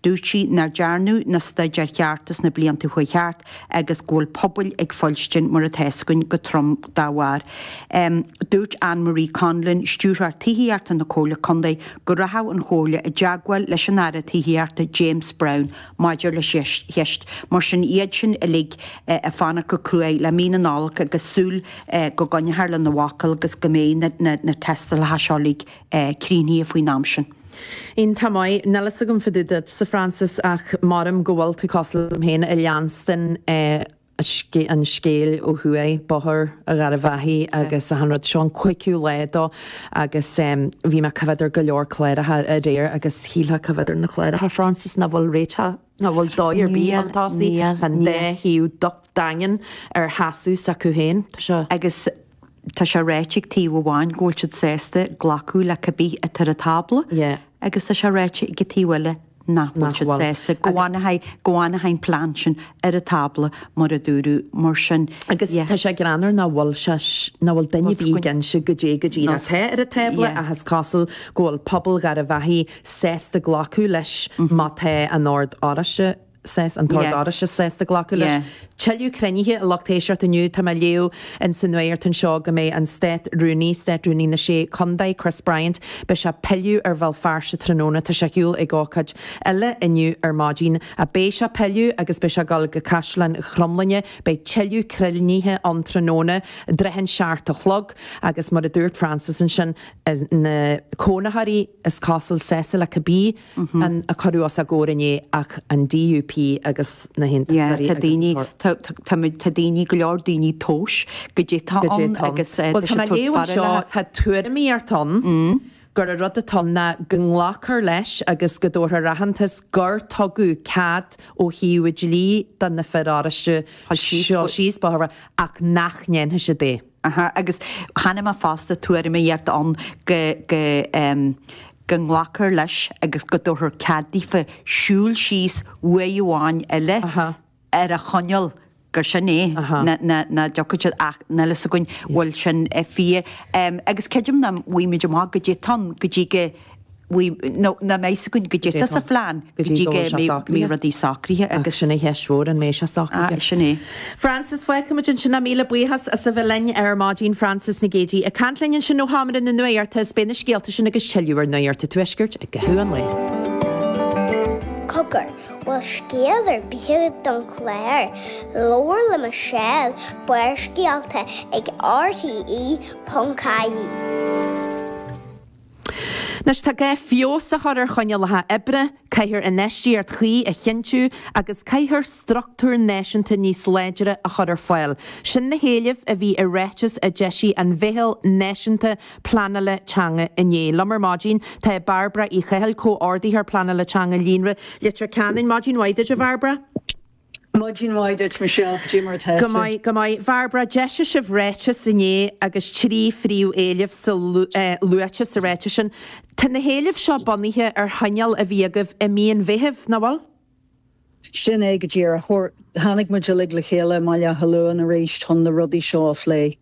Dúirt sí nár dearnadh na staidéir chearta sna blianta a chuaigh thart agus go bhfuil pobail ag fuilstin mar atá a fhios againn go trom dá bharr. Dúirt Anne Marie Conlon, Stiúrthóir Tithíochta na Comhairle Contae go rachadh an Chomhairle i dteagmháil leis an Aire Tithíochta James Browne maidir leis an cheist mar sin. Iad sin uilig ag fanacht go cruaidh le mí na Nollag agus súil go gcoinneofar lena bhfocal agus go mbeidh na tástálacha seo uilig críochnaithe faoin am sin. Iontach maith, níl fhios agam fá dtaobh duitse, Frances, ach measaim go bhfuil tú cosúil liom féin ag leanstan an scéil ó thuaidh, Bóthar Gharbh Achaidh agus achan rud. Seo an cúigiú lá dó agus bhí mé ag coimhéad ar go leor cláracha aréir agus shílfeá ag coimhéad ar na cláracha, Frances, nach bhfuil réiteach, nach bhfuil dóigh ar bith chun tosaigh, an dá thaobh daingean ar sheasamh s'acu féin. Tá seo. Agus tá sé ráite ag taobh amháin go bhfuil siad sásta glacadh le cibé atá ar an tábla agus tá sé ráite ag an taobh eile nach bhfuil siad sásta, go bhfanann an plean sin ar an tábla mar a dúradh. Mar sin, agus tá sé greannmhar nach bhfuil duine ar bith ag inse cad é go díreach atá ar an tábla ach is cosúil go bhfuil pobal Gharbh Achaidh sásta glacadh leis má tá an tOrd Oráiste, saghas an tOrd Oráiste sásta glacadh leis. Tuilleadh cruinnithe a lucht éisteachta inniu tá mé ag léamh in sa nuachtán seo go mbeidh an Stát Rúnaí, Stát Rúnaí na Sé Condae, Chris Bryant, beidh sé ag pilleadh ar Bhéal Feirste tráthnóna. Tá sé ar shiúl ag ócáid eile inniu ar maidin. Beidh sé ag pilleadh agus beidh sé ag goil go Caisleán Chromghlinne. Beidh tuilleadh cruinnithe ann tráthnóna. I dtrátha an seacht a chlog agus mar a dúirt Frances ansin na cónaitheoirí is cosúil sásta le cibé, a cuireadh os a gcomhair inné ach an DUP agus na hAontachtóirí agus an Pá. Tá daoine, go leor daoine ag tomhas goidé atá ann agus tá sé ag tabhairt faoina leithéid. Bhuel tá mé ag léamh anseo, tá tuairimíocht ann gur an rud atá ann ná go nglacfar leis agus go dtabharfar aitheantas gur tugadh cead ó thaobh dlí do na fir Oráiste siúl síos, ach nach ndéanfaidh siad é. Aha, agus chonaic mé fosta tuairimíocht ann go, go, em, go nglacfar leis agus go dtabharfar cead daofa siúl síos uair amháin eile Aha. ar an choinníoll gur sin é, Aha. ná, ná, nach dtiocfaidh siad ach, níl a fhios againn an bhfuil sin eh, fíor. Em, agus creidim nach bhfaighimid amach goidé atá ann, go dtí go, nach mbeidh 's againn goidé atá sa phlean go dtí go mbeidh rudaí socraithe agus sin é an cheist mhór an mbeidh sé socraithe. Sin é. Frances, Fágfaimid ansin é, míle buíochas as a bheith linn ar maidin Frances Nic Géidigh ag caint linn ansin ó Sheomra na Nuachta is beidh na scéalta sin agus tuilleadh ar Nuacht an Tuaiscirt i gcaitheamh an lae. Cogar, bhfuil scéal ar bith agat don chlár? Labhair le Michelle, Barrscéalta ag RTE.ie. Anois tá gá le feabhas a chur ar choinníollacha oibre, caithfear infheistíocht chuí a chinntiú agus caithfear structúr náisiúnta níos láidre a chur ar fáil. Sin na héilimh a bhí i ráiteas a d'eisigh an Mheitheal Náisiúnta Pleanála Teanga inné. Liom ar maidin tá Bairbre Uí Chathail, Comhordaitheoir Pleanála Teanga Líonra Leitir Ceanainn. Maidin mhaith duit a Bhairbre. Maidin mhaith duit Michelle, goidé mar atá tú? Go maith, go maith. Bhairbre, d'eisigh sibh ráiteas inné agus trí phríomh-éileamh sa, eh, luaite sa ráiteas sin. Tá na héilimh seo bunaithe ar chomhdháil a bhí agaibh i mí an Mheithimh, nach bhfuil? Sin é go díreach. Fuair, tháinig muid uilig le chéile i mBaile Átha Luain arís chun na rudaí seo a phlé.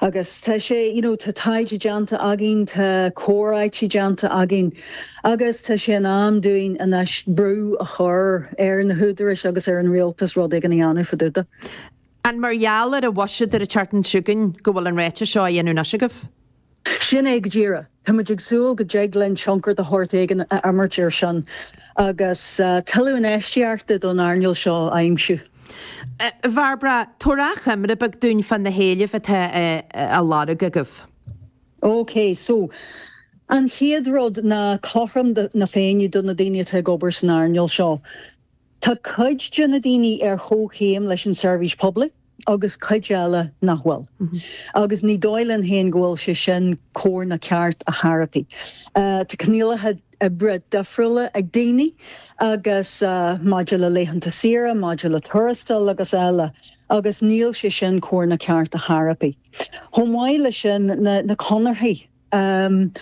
Agus tá sé, you know, tá taighde déanta againn, tá comhráití déanta againn agus tá sé in am dúinn anois brú a chur ar na húdaráis agus ar an rialtas rud éigin a dhéanamh fá dtaobh dó. An mar gheall ar an bhuiséad atá ag tarraingt chugainn go bhfuil an ráiteas seo á dhéanamh anois agaibh? Sin é go díreach. Tá muid ag súil go dtig linn tionchar de shórt éigin a imirt air sin agus tuilleadh infheistíochta don earnáil seo a aimsiú. Bhairbre, tabhair achoimre bheag dúinn fá na héilimh atá á lorg agaibh. OK, so, an chéad rud ná cothrom na Féinne do na daoine atá ag obair san earnáil seo. Tá cuid de na daoine ar chomhchéim leis an seirbhís poiblí agus cuid eile nach bhfuil agus ní dóigh linn féin go bhfuil sé sin cóir ná ceart ar chor ar bith. Tá coinníollacha oibre difriúla ag daoine agus maidir le laethanta saoire, maidir le tuarastail agus eile agus níl sé sin cóir ná ceart ar chor ar bith. Chomh maith leis sin na conarthaí Ahm.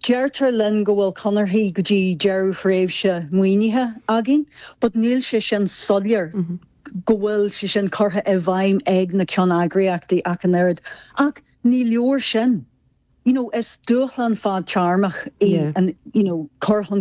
Deirtear linn go bhfuil conarthaí go dtí deireadh thréimhse maoinithe againn, but níl sé sin soiléir go bhfuil sé sin curtha i bhfeidhm ag na ceanneagraíochtaí ach an oiread. Ach ní leor sin. You know, is dúshlán fadtearmach í an, you know, cur chun.